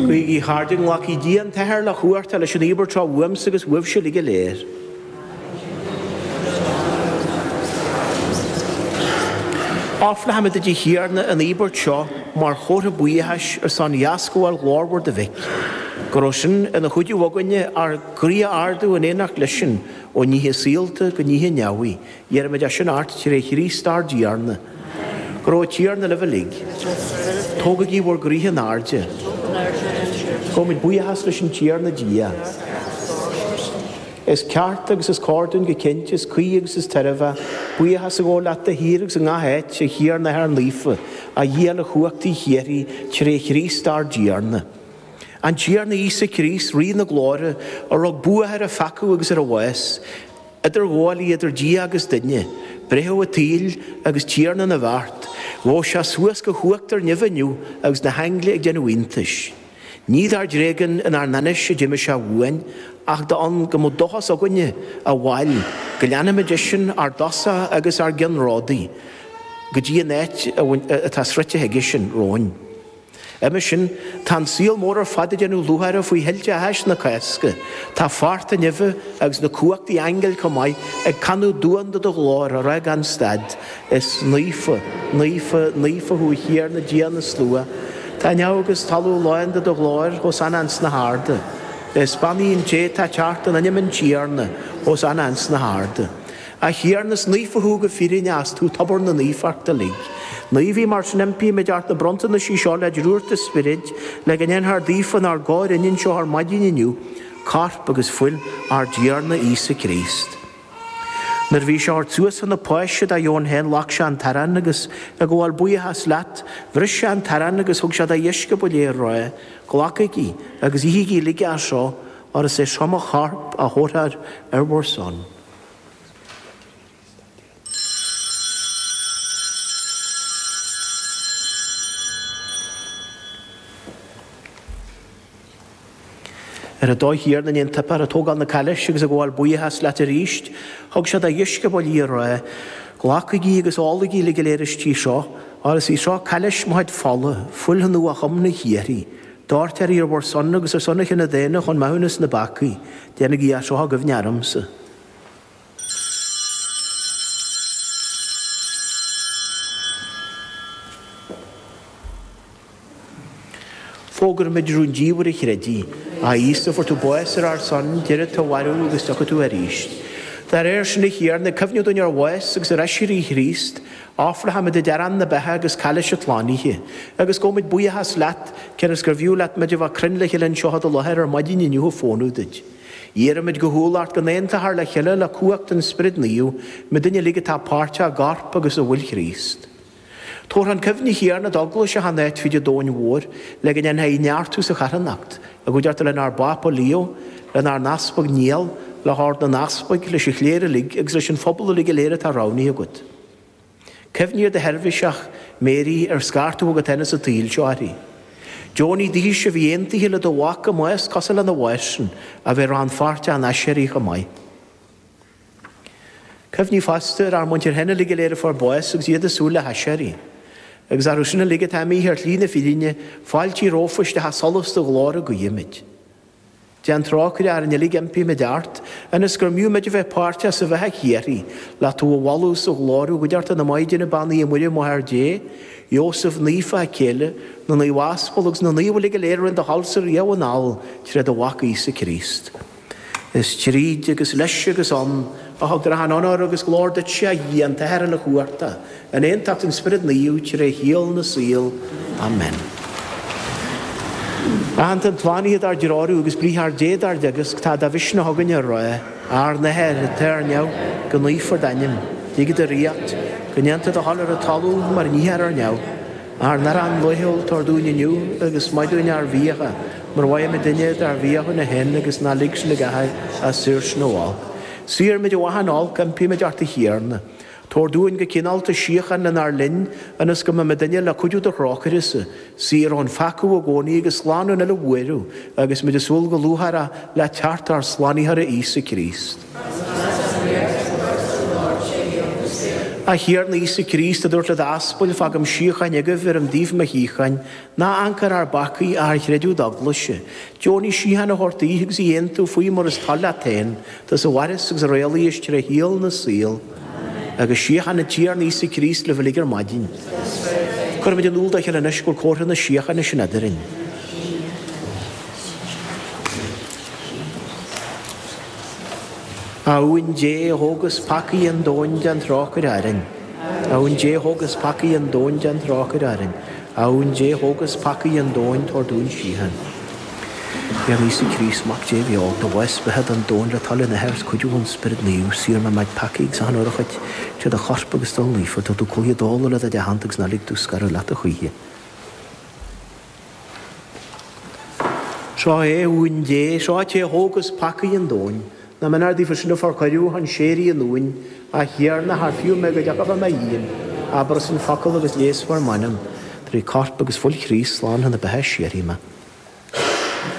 Guígí, a chairde, go nglacfaidh Dia an tAthair uilechumhachtach leis an íobairt seo uaimse agus uaibhse uilig go léir. Ofrálaimid duit, a Thiarna, an íobairt seo mar chomhartha buíochais ar son dheascabháil ghlórmhar do mhic, go raibh sin ina chuidiú againne ár gcroí a ardú in éineacht leisean ó nithe saolta go nithe neamhaí, Iarraimid é sin ort tré Chríost ár dTiarna. Go raibh an Tiarna libh uilig. Tógaigí bhur gcroíthe in airde. Gabhaimid buíochas leis an Tiarna Dia. Is ceart agus is cóir dúinn go cinnte, is cuí agus is tairbheach, buíochas a ghabháil leat de shíor agus i ngach áit, a Thiarna, a Athair Naofa, a Dhia uilechumhachtaigh shíoraí, tré Chríost ár dTiarna. An Tiarna Íosa Críost, Rí na Glóire, a rug bua ar an pheaca agus ar an bhás, Idirghabhálaí idir Dia agus duine, breitheamh an tsaoil agus tiarna na bhfeart, ghabh sé suas go huachtar neimhe inniu agus na haingle ag déanamh iontais. Ní dár dtréigean inár n-ainnise a d'imigh sé uainn, ach d'fhonn go mbeadh dóchas againne, a bhaill, go leanfaimid eisean, ár dtosach agus ár gceannródaí, go dtí an áit atá sroichte aigesean romhainn. Uime sin, tá an saol mór ar fad ag déanamh lúcháire faoi thuilte áthais na Cásca. Tá fearta neimhe agus na cumhachtaí aingil chomh maith ag canadh duan do do ghlóir á rá gan stad, Is naofa, naofa, naofa thú, a Thiarna Dia na Slua, tá neamh agus talamh lán de do ghlóir, Hosanna ins na hArda. Is beannaithe an té atá ag teacht in ainm an Tiarna, Hosanna ins na hArda. A Thiarna, is naofa thú go fírinne, is tú tobar na naofachta uilig. Naomhaigh, mar sin impímid ort na bronntanaisí seo le drúcht do Spioraid, le go ndéanfar daofa inár gcomhairne anseo ar maidin inniu, Corp agus Fuil ár dTiarna Íosa Críost. Nuair a bhí sé á thabhairt suas chun na Páise dá dheoin féin ghlac sé an t-arán agus, ag gabháil buíochas leat, bhris sé an t-arán agus thug sé dá dheisceabail é, á rá, Glacaigí agus ithigí uilig as seo, óir is é seo mo Chorp a thabharfar ar bhur son. Ar an dóigh chéanna i ndiaidh an tsuipéir ag tógáil na cailíse agus ag gabháil buíochas leat arís. Thug sé dá dheisceabail í, á rá. Glacaigí agus ólaigí uilig go léir aisti seo, óir is í seo cailís mo chuid fola, fuil an nuathiomna shíoraí. Doirtfear í ar bhur son agus ar son an chine daonna chun maithiúnas na bpeacaí, déanaigí é seo i gcuimhne ormsa. Fógraímid rúndiamhair an chreidimh, A Íosa, fuair tú bás ar ár son, d'éirigh tú ó mhairbh agus tiocfaidh tú arís. Dá réir sin, a Thiarna, ag cuimhneamh dúinn ar bhás agus ar aiséirí Chríost, Ofrálaimid duit arán na beatha agus cailís an tslánaithe, agus gabhaimid buíochas leat, cionn is gurbh fhiú leat muid a bheith cruinn le chéile anseo i do láthair ar maidin inniu ag fónamh duit. Iarraimid go humhal ort go n-aontaítear le chéile le cumhacht an Spioraid Naoimh muidinne uilig atá páirteach i gCorp agus i bhFuil Chríost. Tabhair chun cuimhne, a Thiarna, d'Eaglais achan áit ar fud an domhain mhóir le go ndéanfá í a neartú sa charthanacht, i gcuideachta lenár bPápa Leo, lenár nEaspag Niall, le hOrd na nEaspag, leis an chléir uilig agus leis an phobal uilig go léir atá roghnaithe agat. Cuimhnigh ar do sheirbhiseach, Mary, ar scairt tú chugat féin as an tsaol seo uirthi. Deonaigh dise a bhí aontaithe le do mhac i mbás cosúil lena bhás-san a bheith rannpháirteach ina aiséirí chomh maith. Cuimhnigh fosta ar ár muintir féin uilig go léir a fuair bás agus iad ag súil le haiséirí. Agus orthu sin uilig atá imithe ar shlí na fírinne, fáiltigh rompu isteach i solas do ghlóire guímid. Déan trócaire orainn uilig impímid ort, ionas go mb'fhiú muid a bheith páirteach sa bheatha shíoraí, le tú a mholadh is a ghlóiriú i gcuideachta na Maighdine Beannaithe Muire, Máthair Dé, Iósaf Naofa, a céile, na Naomh Aspal agus na Naomh uilig go léir a rinne do thoilse riamh anall tré do Mhac Íosa Críost. Is tríd, agus leis, agus ann, a thugtar achan onóir agus glóir duitse, a Dhia, an tAthair Uilechumhachtach, In aontacht an Spioraid Naoimh, tré shaol na saol. Amen. Aitheanta an tslánaithe dár dtreorú, agus Briathar Dé dár dteagasc, tá de mhisneach againn a rá, Ár nAthair, atá ar neamh, go naofar d'ainm, go dtiocfaidh do ríocht, go ndéantar do thoil ar an talamh mar a níthear ar neamh. Ár n-arán laethúil tabhair dúinn inniu, agus maith dúinn ár bhfiacha, mar a mhaithimidne dár bhféichiúna féin, agus ná lig sinn i gcathú, ach saor sinn ó olc. Saor muid ó achan olc, impímid ort, a Thiarna. Tabhair dúinn go cineálta síocháin lenár linn, ionas go mbeidh muidinne le cuidiú do thrócairese, saor ón pheaca i gcónaí agus slán ón uile bhuaireamh, agus muid ag súil go lúcháireach le teacht ár Slánaitheora Íosa Críost. Óir is leatsa an ríocht, an chumhacht is an ghlóir tré shaol na saol. A Thiarna Íosa Críost, a dúirt le d'aspail, Fágaim síocháin agaibh, bheirim daoibh mo shíocháin, ná hamharc ar ár bpeacaí, ach ar chreideamh d'Eaglaise, deonaigh síocháin a thabhairt daoithe agus í a aontú faoi mar is toil leat féin, Tusa a mhaireas agus a rialaíos tré shaol na saol, agus síocháin an Tiarna Íosa Críost libh uilig ar maidin. Cuirimid in iúl dá chéile anois gur comhartha na síochána sin eadrainn. A Uain Dé, a thógas peacaí an domhain, déan trócaire orainn. A Uain Dé, a thógas peacaí an domhain, déan trócaire orainn. A Uain Dé, a thógas peacaí an domhain, tabhair dúinn síocháin. A Thiarna Íosa Críost, Mac Dé bheo, do bhás beatha don domhan le toil an Athar agus cuidiú an Spioraid Naoimh, saor mé ó mo chuid peacaí agus achan urchóid, tríd do chorp agus d'fhuil naofa, tabhair domh cloí i dtólamh le do chuid aitheanta agus ná lig domh scaradh leat a choíche. Seo é Uan Dé, seo é an té a thógas peacaí an domhain. Nach méanar daofa sin a fuair cuireadh chun séire an Uain, A Thiarna, chan fiú mé go dtiocfá faoi mo dhíon, abairse an focal agus leigheasfar m'anam, trí Corp agus Fuil Chríost, slán chun na beatha síoraí mé.